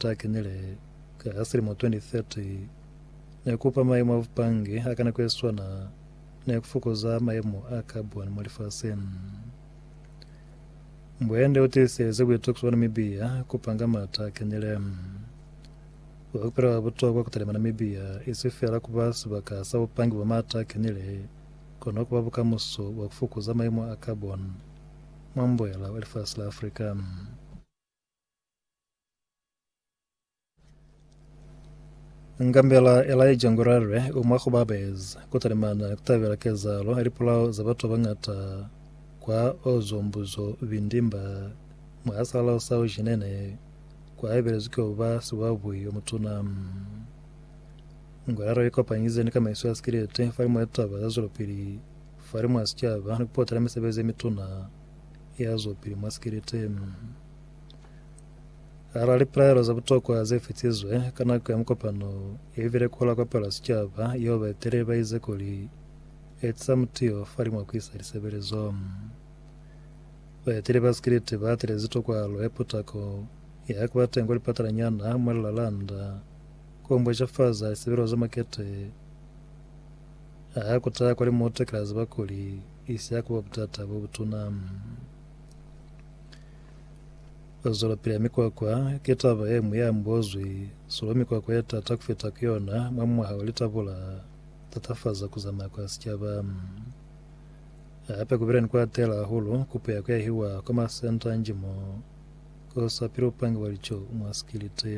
Sa kenile ka ya silimo 2030, ne kupa mayemo a bupange a ka nako ye swana ne ku fokoza mayemo a carbon mwa lifaseng. Mbwende u tiisezi buitokiso bwa Namibia ku panga m'ata a kenile. Ku ka ba butokwa ku talima Namibia i si feela ku ba sibaka sa bupange bwa m'ata a kenile, kono ku ba bukamuso bwa ku fokoza mayemo a carbon mwa mboela wa lifasi la Africa. Ngambela Elijah Ngurare u mwa ku ba baezi ku talimana ku tabela kezahalo ya lipolao za batu ba bañata kwa Ozombuzo Vindimba mwa salao sa Ujinene kwa ebelezwi ki oba sibuabui o mutuna. Ngurare u ikopanyize ni kamaiso ya sikilete fa limwa litaba za zwelopili fa limwa sicaba ni ku potela misebezi ye mituna ya zwopili mwa sikilete. Hala lipelaelo za butokwa ze fitizwe ka nako ya mukopano ye bile ku lakopelwa sicaba, yeo baeteleli ba ize kuli, Etiza mutio fa limwa ku isa lisebelezo. Baeteli ba sikiliti ba atilezi tokwalo ya putako ya ku ba teñi kwa lipatalanyana mwa lilalanda ku mbwejafaza lisebelezo za makete a ku taha kwa limutu ki la ziba kuli isi ya ku ba butata bo butuna. Ba zwelapili ya mikwakwa ki taba ye ñwi ya mbozwi solo. Mikwakwa ye t'ata ku fita ku yona mwa mwaha wa litabu l'a tatafaza ku zamaya kwa sicaba. Hape ku bile ni ku atela hahulu kupo ya ku yahiwa kwa masenta a njimo k'o sa pili bupangi bwa lico mwa sikiliti.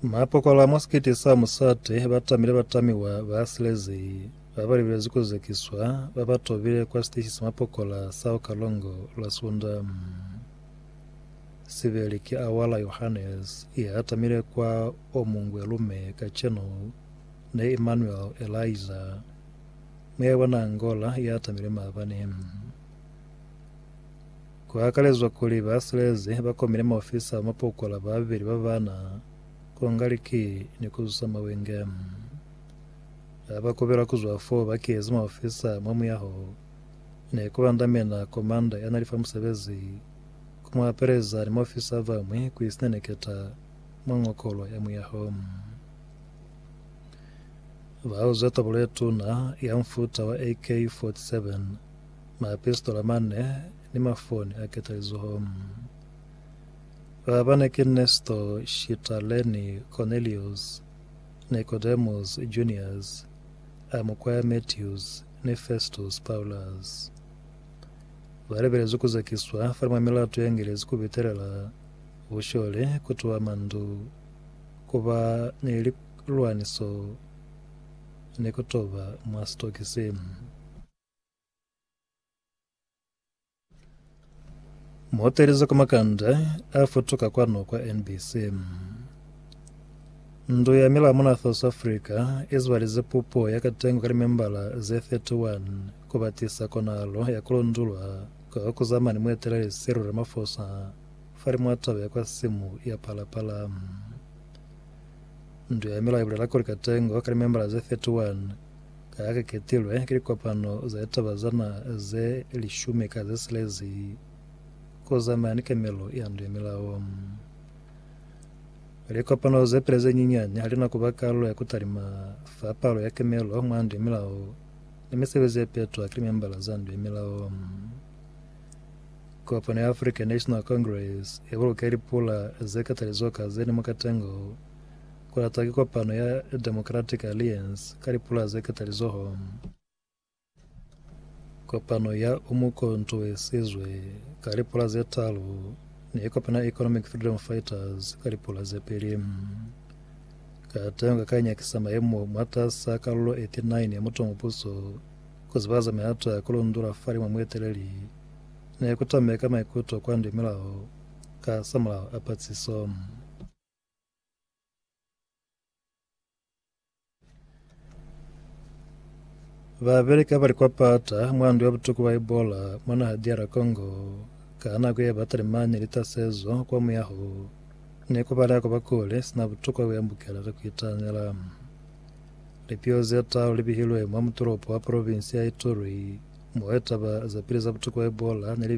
Mapokola mwa sikete sa musate ba tamile batamiwa ba silezei ba ba libelezi ku zekiswa ba ba tobile kwa siteshi sa mapokola sa ku Kalongo lwa Sunda. Sibeli ki Awala Yohannes ya tamile kwa o mungwe lume kacenu ne Emmanuel Eliza, muya bona Angola ya tamile maabani. Ku akalezwa kuli ba silezi ba komile maofisa ba mapokola ba babeli ba bana ku nga liki ni ku zusa mawenge. Ha ba kubelwa ku zwa fo ba kezi maofisa mwa muyaho, ne ku bandamena komanda ya na li fa musebezi ku mu apeleza ni maofisa a bañwi ku isineneketa mwa ngokolo ya muyaho. Ba uze tobolo ye tuna ya mufuta wa AK-47. Maepistola mane ni mafoni a ketalizoho mm. Ba bane ki Nesto, Shita, Leni, Konelius, Nikodemus, Junias, a mukwaya Metius, ni Festus, Paulus. Ba lebelezwi ku zekiswa fale mwa milato ya Ngelezi ku bitelela bushole, ku tuha mandu, ku ba ni lilwaniso, ni ku toba mwa sitokisi mm. Muotelezi kwa makanda a futuka kwanu kwa NBC. Ndu ya milamu na South Africa e zibalize pupo ya katengo ka limembala ze 31 ku batisa konahalo ya ku lundulwa kwa ku zama ni mueteleli Cyril Ramaphosa fa limo ya taba ya kwa simu ya Phala Phala. Ndu ya milao i bulela kuli katengo ka limembala ze 31 Ka ha ki ketilwe ki likopano za litaba za na ze lishumi ka ze silezi ku zamaya ni kemelo ya ndu ya milao. Likopano ze pili ze nyinyani ha li na ku ba kalulo ya ku talima fa palo ya kemelo mwa ndu ya milao ni misebezi ye petwa ki limembala za ndu ya milao. Kopano ya African National Congress i buluke lipula ze katalizo ka ze ni mukatengo ku latwa ki kopano ya Democratic Alliance ka lipula ze ketalizoho, kopano ya Umukhonto we Sizwe ka lipula ze talu, ni kopano ya Economic Freedom Fighters ka lipula ze pili. Kateho nga ka nyakisa mayemo mwatas'a kalulo 89 ya Mutu wa Mupuso ku zibahaza mihato ya ku lundula fa limo mueteleli ne ku tameka maikuto kwa Ndwemilao ka samulaho a patsiso. Babeli ka bali kwa pata mwa ndu ya butuku bwa Ebola mwa naha DR Congo ka nako ye ba talimani litasezo kwa muyaho ne ku balea ku ba kule sina butuku bwa ku yambukela ka ku itaanela. Lipiho ze taalu li bihilwe mwa mutulopo wa provinsi ya Ituri mo litaba za pili za butuku bwa Ebola ne li